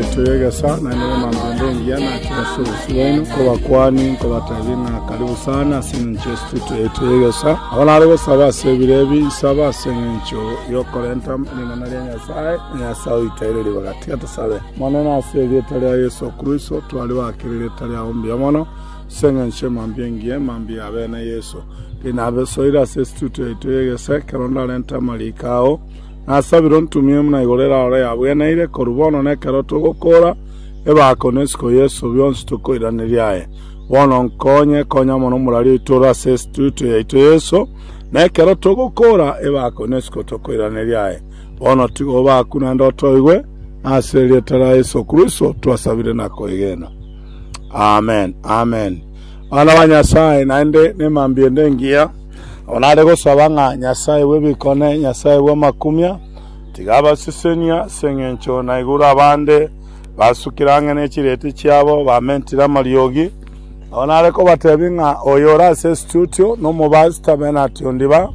Yeso y'egesa na ere nemanto ende engiya nache ase obosio bwaino, nkobakwani, nkobateebie ng'a karibu sana ase engencho y'Estudio yaito y'egesa. Nabo nare gosaba ase ebiro ebi, nsaba ase engencho y'okorenta ring'ana ria Nyasae, na Nyasae oite aire ribaga tiga tosabe. Omonene, ase erieta ria Yeso Kristo, twaribake ririeta riao mbuya mono, ase engencho emambia engiya, emambia ya bene Yeso. Rinabesoire ase Estudio yaito y'egesa, ekero ndarenta amariiko ao, Nasabire ontumie buna igoro erarore yabweneire, korwa bono na ekero togokoora ebaako na esiko Yeso, bionsi tokoiraneria aye. Bono nkonye, konya mono omorari oito ore ase Instituto yaito Yeso, na ekero togokoora ebaako na esiko tokoiraneria aye. Bono tiga obaaku naende otoigwe, na ase erieta ria Yeso Kristo twasabire na koegena. Amen. Amen. Omwana bwa Nyasae naende nemambiedo engiya, abo nare gosaba ng'a Nyasae bw'ebikone, Nyasae bw'amakumia, tiga abasesenie ase engencho naigure abande basukire ang'e ne chireeti chiabo, bamentire amariogi. Nabo nare kobatebia ng'a oyo ore ase esitutio nomobaasita Bernard Ondiba.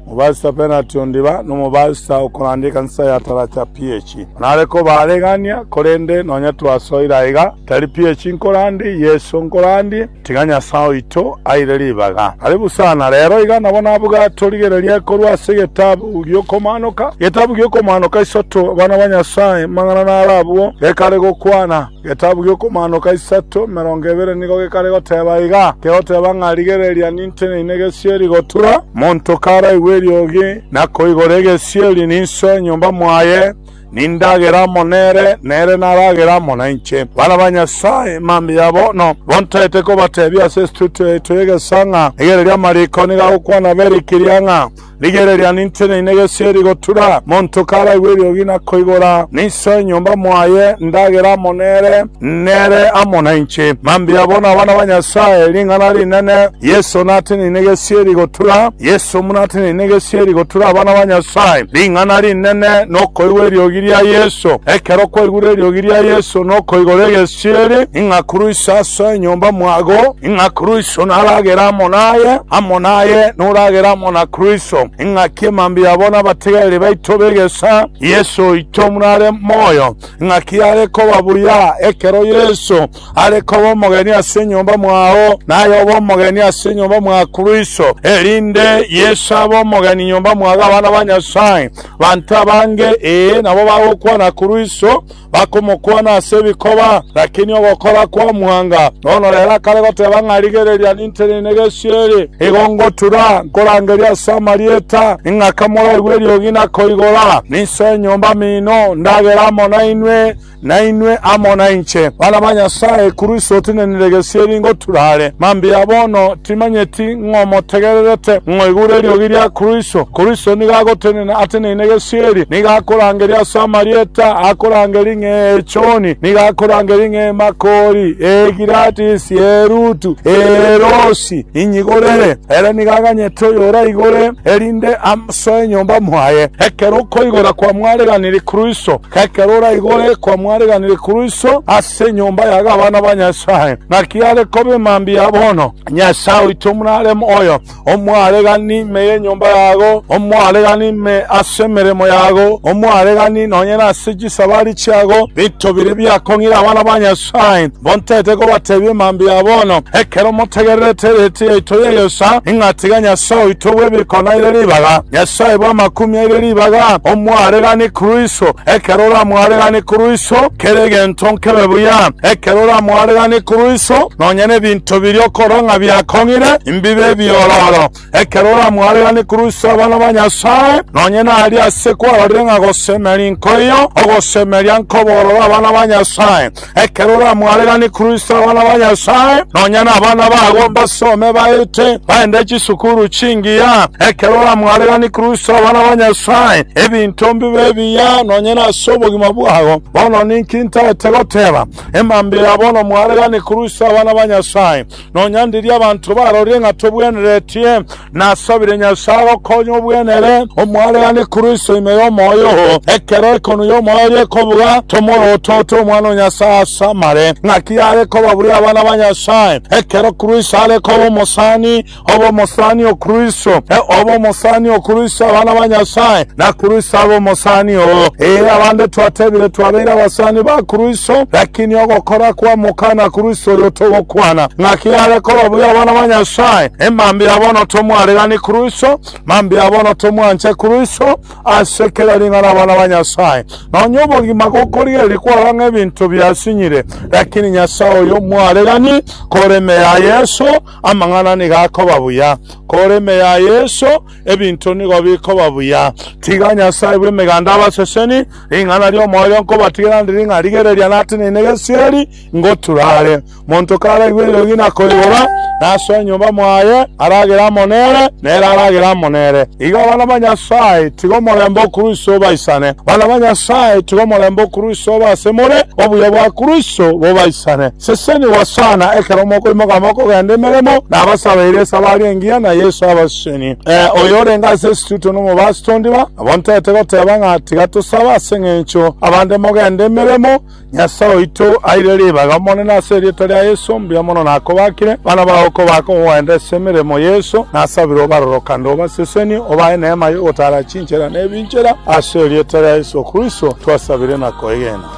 Omobaisa penati ondiba nomobaisa okoranda ekansa ya Taracha PH. Nare kobaregania, korende nonya twasoire aiga, tari PH nkorandie, Yeso nkorandie, tiga Nyasae oito aire ribaga. Aria bosana rero iga nabo nabuga torigereria korwa ase getabu giokomaanoka, getabu giokomaanoka isoto, abana ba Nyasae, mang'ana naro abwo gekare gokwana. Getabu gi'Okomaanoka isato, emerongo ebere nigo gekare goteba iga, kegoteba ng'a rigereria ninte neine egesieri gotura. Monto karaigwe eriogi na koigora egesieri ninsoe enyomba mwaye, nindagere amo nere, nere naragere amo nainche. Bana ba Nyasae, mambia bono bontagete kobatebia ase estudio yaito y'egesaa ng'a rigereria amariko nigo agokwana Beri Kiriang'a. Rigereria, ninteneine gesieri gotura, monto karaigwe eriogi na koigora, ninsoe enyomba moaye ndagera amo nere, nere amo nainche. Mambia bono abana ba Nyasae, ring'ana rinene. Yeso nateneine gesieri gotura, Yeso buna ateneine gesieri gotura abana ba Nyasae. Ring'ana rinene nokoigwa eriogi ria Yeso. Ekero kwaigure eriogi ria Yeso nokoigora egesieri, ing'akuruise asoe enyomba mwago. Ing'a Kristo naragere amo naye, amo naye noragere amo na Kristo, ing'aki emambia yabo nabategereri baito b'egesaa Yeso oito buna are moyo, ing'aki yare koba buya ekero Yeso are koba omogeni ase enyomba mwao, naye obe omogeni ase enyomba mwa Kristo, erinde Yeso abe omogeni nyomba mwa abana ba Nyasae. Banto abange, ee, nabo bagokwana Kristo, Bakomokwana ase ebikoba, lakini ogokora kwamwanga. Bono rero akare goteba ng'a, Rigereria, ninteine negesweri, igo ngotura, nkorangerie ase amarieta, ing'aka moraigwe eriogi na koigora. Ninsoe enyomba mino, ndagere amo nainwe, na inwe amo nainche. Bana ba Nyasae, korwa ise otinenire egesweri ngotura are. Mambia bono, timanyeti, ng'a omotegererete, ng'a oigure eriogi ria Kristo. Kristo nigo agotenena ateneine gesieri, nigo akorangeria ase amarieta akorangeria ng'a Echoni, nigo akorangeria ng'a Emakori, Egiradisi, Erutu, Erosi, inyigorere. Ere nigo aganyete oyoraigore, erinde asoe enyomba mwaye. Ekero okoigora kwamwareganirie Kristo, ekero oraigore kwamwareganirie Kristo ase enyomba ya gabana ba Nyasae, naki are kobe mambia bono. Nyasae oito omorareme oyo omwaregani ime y'enyomba yago, omwaregani ime ase emeremo yago, omwaregani nonye nase chisabari chiago, binto biria biakong'ire abana ba Nyasae mbontete kobatebia emambia ya bono, ekero motegererete ereeti yaito y'egeesa, ng'a tiga Nyasae oito bw'ebiiko naire ribaga, Nyasae bw'amakumi aire ribaga, omwaregani korwa iso, ekero oramwaregani korwa iso, kera egento nkebe buya, ekero oramwaregani korwa iso, nonye nebinto Tobirie okorwa ng'a biakong'ire mbibe ebiororo ekero oramwarera Nikrusto abana ba Nyasae, nonye naria ase kwarorire ng'a gosemeria nkoiyo, ogosemeria nkobororo abana ba Nyasae. Ekero oramwarera Nikrusto abana ba Nyasae, nonye nabana babo mbasome baete baende chisukuru chingiya. Ekero oramwarera Nikrusto abana ba Nyasae, ebinto mbibe ebiya nonye nase obogima bwabo. Bono ninki ntaete goteba? Emambia ya bono mware gani kurusia abana ba Nyasae. Nonya ndiria abanto barorie ng'a tobweneretie, nasabire Nyasae gokonya obwenere omware gani kurusia ime y'omoyo oo. Ekero ekonwa y'omoyo oria ekobuga, tomorotote omwana o Nyasae ase amare. Ng'aki yare koba buri abana ba Nyasae, ekero kurusia are koba omosani, Obe omosani o Kristo, ee, obe omosani o Kristo, abana ba Nyasae, na Kristo abe omosani oo. Ee, abande twatebire twabeire abasani ba Kristo, lakini ogokora kw'Omokana Kristo oyo togokwana ng'aki yare kora buya abana ba Nyasae. E, mambia bono tomwaregani Kristo, mambia bono tomwanche Kristo ase kera ring'ana abana ba Nyasae. Nonya obogima gokorigereria kwaba ng'ebinto biasinyire, lakini Nyasae oyo mwaregani koreme ya Yeso, Amang'ana nigo akoba buya, kore ime ya Yeso ebinto nigo bikoba buya. Tiga Nyasae bw'Emeganda abaseseni, ring'ana ri'omoyo nkobatigera ndiri ng'a rigereria nateneine gesieri ngotura are. Monto karaigwe eriogi na koigora, nasoe enyomba mwaye, aragere amo nere, nere aragere amo nere. Iga abana ba Nyasae, tiga omorembe o Kristo obaisane. Bana ba Nyasae, tiga omorembe o Kristo obe ase more, obuya bwa Kristo bobaisane. Seseni Hosana, ekero mokoimoka mokogenda emeremo, nabasabeire esabari engiya na Yesu abaseseni. Ee, oyo orenge ase esituto nomobasi tondiba, nabo ntaete goteba ng'a tiga tosabe ase engencho abande mogende emeremo. Nyasae oito, aire ribaga Omonene ase erieta ria Yesu, mbuya mono nakobakire, bana bao kobaka ogogenda ase emeremo Yesu. Nasabire obarore kande obaseseni, obae neema yogotaara chinchera nebinchera, ase erieta ria Yesu Kristo twasabire na koegena.